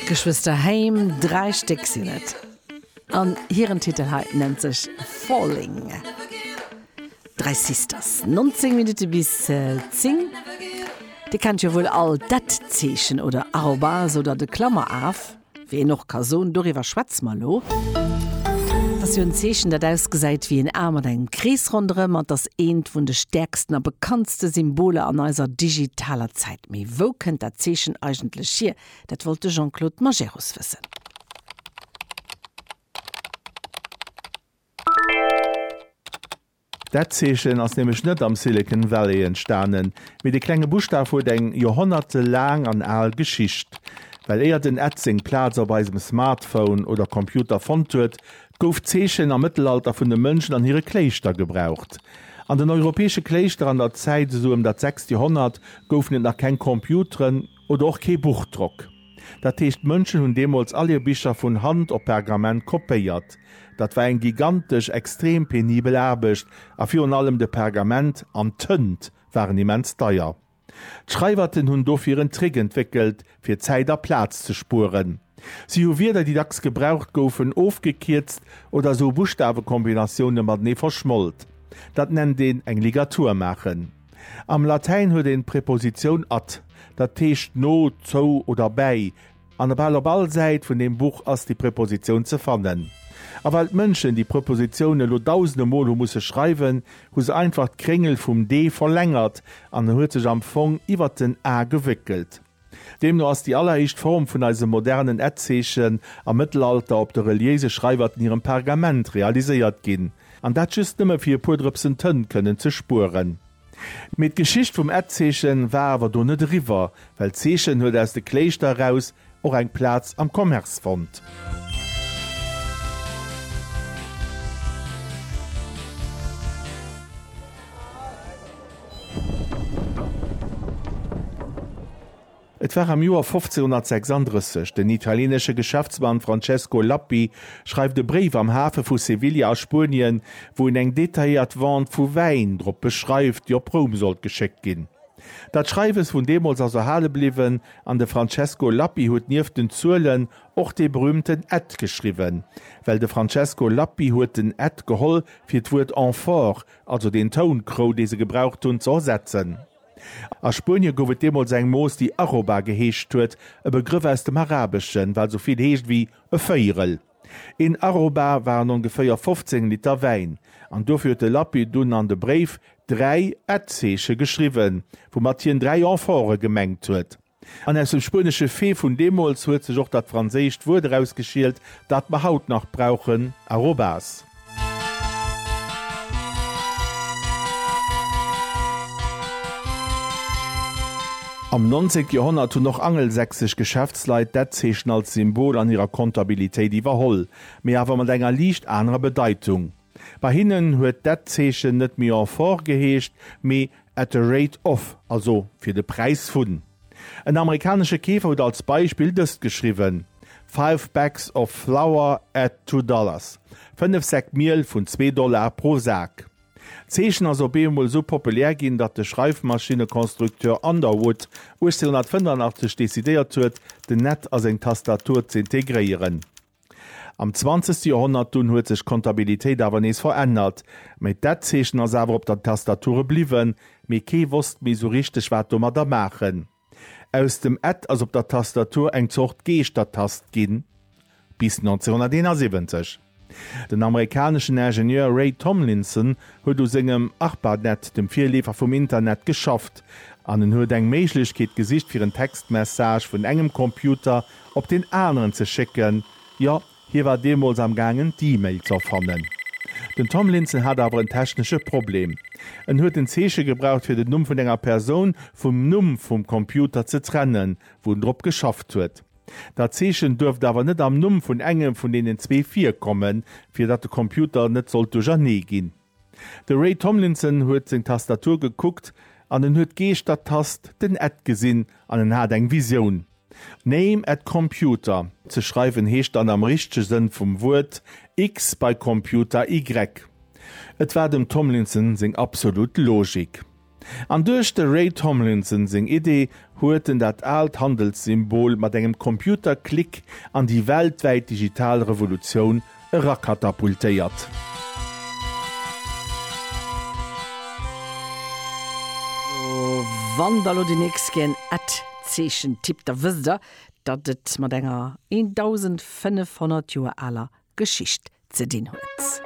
D'Geschwëster Haim, dräi Stéck sinn et, an hiren Titel hei nennt sech Falling. Dräi Sisters, 19 Minutte bis 10. Dir kennt jo wuel all d'At-Zeechen oder Arrobase oder de Klammeraf. Wéi een och ka soen, doriwwer schwätze mer elo. Et ass jo en Zeechen, dat ausgesäit wéi en A mat engem Krees ronderëm an et ass eent vun de stäerksten a bekanntste Symboler an eiser digitaler Zäit. Mee wou kënnt dat Zeechen eigentlech hier? Dat wollt de Jean-Claude Majerus wëssen. Dat Zeechen ass nämlech net am Silicon Valley entstanen, mee de klenge Buschtaf huet eng joerhonnertelaang an al Geschicht. Well éier den Ad seng Plaz op eisem Smartphone oder Computer fonnt huet, gouf d'Zeechen am Mëttelalter vun de Mënschen an hire Kléischter gebraucht. An den europäesche Kléischter an der Zäit esou ëm dat sechst Joerhonnert goufen et nach keng Computeren, Oder och kee Buchdrock. Dat heescht, d'Mënschen hunn deemools all hir Bicher vun Hand op Pergament kopéiert. Dat war eng gigantesch, extrem penibel Aarbecht a virun allem de Pergament an d'Tënt waren immens deier. D'Schreiwerten hunn dofir en Trick entwéckelt, fir Zäit a Plaz ze spueren. Si hu Wierder, déi dacks gebraucht goufen, ofgekierzt oder esou Buschtawekombinatioune matenee verschmolt. Dat nennt een eng Ligatur maachen. Am Latäin huet een d'Prepositioun at, dat heescht no, zou oder bäi, an bal op all Säit vun deem Buch ass déi Prepositioun ze fannen. A well d'Mënschen déi Prepositioun elo dausende Mol hu musse schreiwen, hu se einfach d'Kréngel vum d verlängert an en huet sech am Fong iwwert den a gewéckelt. Deemno ass déi alleréischt Form vun eisem modernen Etzeechen am Mëttelalter op de reliéise Schreiwerten hirem Pergament realiséiert ginn, an dat just nëmme fir e puer Drëpsen Tënt kënnen ze spueren. Mee d'Geschicht vum Etzeeche war awer do net eriwwer, well d'Zeechen huet aus de Kléischter eraus och eng Plaz am Commerce fonnt. Et war am Joer 1536. Den italienesche Geschäftsmann Francesco Lappi schreift e Bréif am Hafe vu Sevilla a Spuenien, wou en eng detailléiert Vente vu Wäin drop beschreift, déi op Roum sollt geschéckt ginn. Dat Schreiwes vun deemools ass erhale bliwwen, an de Francesco Lappi huet nieft den Zuelen och dee berüümten Ed geschriwwen, well de Francesco Lappi huet den Ed geholl fir d'Wuert amphore, also deen Toun, Krou, dee se gebraucht hunn, ze ersetzen. A Spuenie gouf et deemools eng Mooss, déi Arroba geheescht huet, e Begrëff aus dem Arabeschen, wat esou vill heescht wéi e Véierel. Een Arroba waren ongeféier 15 Liter Wäin, an dofir huet de Lappi dunn an de Bréif dräi Ed-Zeeche geschriwwen, woumat hien dräi Amphore gemengt huet. An aus dem spuenesche Fee vun deemools huet sech och dat franséischt Wuert erausgeschielt, dat mer haut nach brauchen, arrobas. Am 19 Joerhonnert hunn och angelsächsesch Geschäftsleit dat Zeechen als Symbol an hirer Kontabilitéit iwwerholl, mee awer mat enger liicht anerer Bedeitung. Bei hinnen huet dat Zeechen net méi en fort geheescht, mee at the rate of, also fir de Präis vun. En amerikanesche Keefer huet als Beispill dëst geschriwwen, Five bags of flour at two dollars, fënnef Säck Miel vun zwee Dollar pro Sak. D'Zeechen ass op eemol esou populär ginn, datt de Schreifmaschinnekonstrukteur Underwood 1885 decidéiert huet, den Net a seng Tastatur z'integréieren. Am zwanzegste Joerhonnert dunn huet sech d'Kontabilitéit awer nees verännert, mä d'Etzeechen ass awer op der Tastature bliwwen, mee kee wosst méi sou richteg wat domadder maachen. Aus dem Et ass op der Tastatur eng Zort Geeschtertast ginn. Bis 1971. Den amerikaneschen Ingenieur Ray Tomlinson huet u sengem Arpanet, dem Virleefer vum Internet, geschafft, an en huet eng Méiglechkeet gesicht fir en Textmessage vun engem Computer op deen aneren ze schécken, jo, hie war deemools am gaangen d'E-Mail z'erfannen. Den Tomlinson hat awer en technesche Problem, en huet en Zeeche gebraucht fir den Numm vun enger Persoun vum Numm vum Computer ze trennen, wou en drop geschafft huet. Dat Zeechen duerft awer net am Numm vun engem vun deenen zwee virkommen, fir datt de Computer net sollt duerchernee ginn. De Ray Tomlinson huet seng Tastatur gekuckt an en huet d'Geeschter-Tast, den Ed gesinn an en hat eng Visioun. Name at computer ze schreiwen heescht dann am richtege Sënn vum Wuert X bei Computer Y. Et war dem Tomlinson seng absolut Logik. An duerch de Ray Tomlinson seng Idee huet en dat aalt Handelssymbol mat engem Computerklick an déi weltwäit digital Revolutioun erakatapultéiert. Wann der elo déi nächst Kéier en Ad-Zeechen tippt, da wësst der, datt et mat enger 1.500 Joer aler Geschicht ze dinn huet.